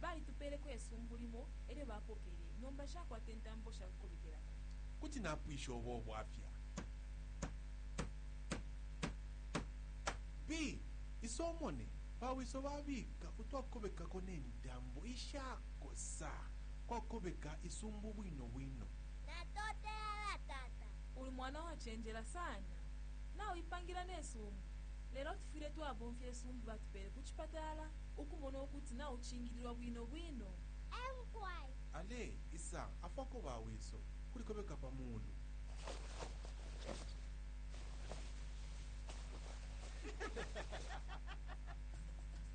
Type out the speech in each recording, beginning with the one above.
Balitupeleko isumbu limo elyo bapokele, nomba shakwata intambo shakukobekelapo. Kuti napwisha ubo bwafya. B Isomone, bawiso babika utwakukobekako ne ntambo ishakosa kwakukobeka isumbu bwino bwino. Natotela tata. Uli mwana wacenjela sana. Nauipangila ne sumbu. Lelo tufwile twabomfya isumbu batupele ku cipatala. ukumona ukuti naucingililwa bwino bwino. Ale isa afwako ba wiso kuli kobeka pa mulu.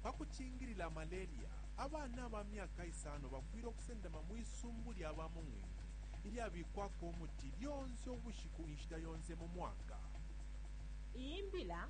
Pa kucingilila malaria, abana aba myaka isano bafwile ukusendama mwi sumbu lya bamung'wing'wi ilyabikwako umuti lyonse ubushiku inshita yonse mu mwaka. Iyi mbila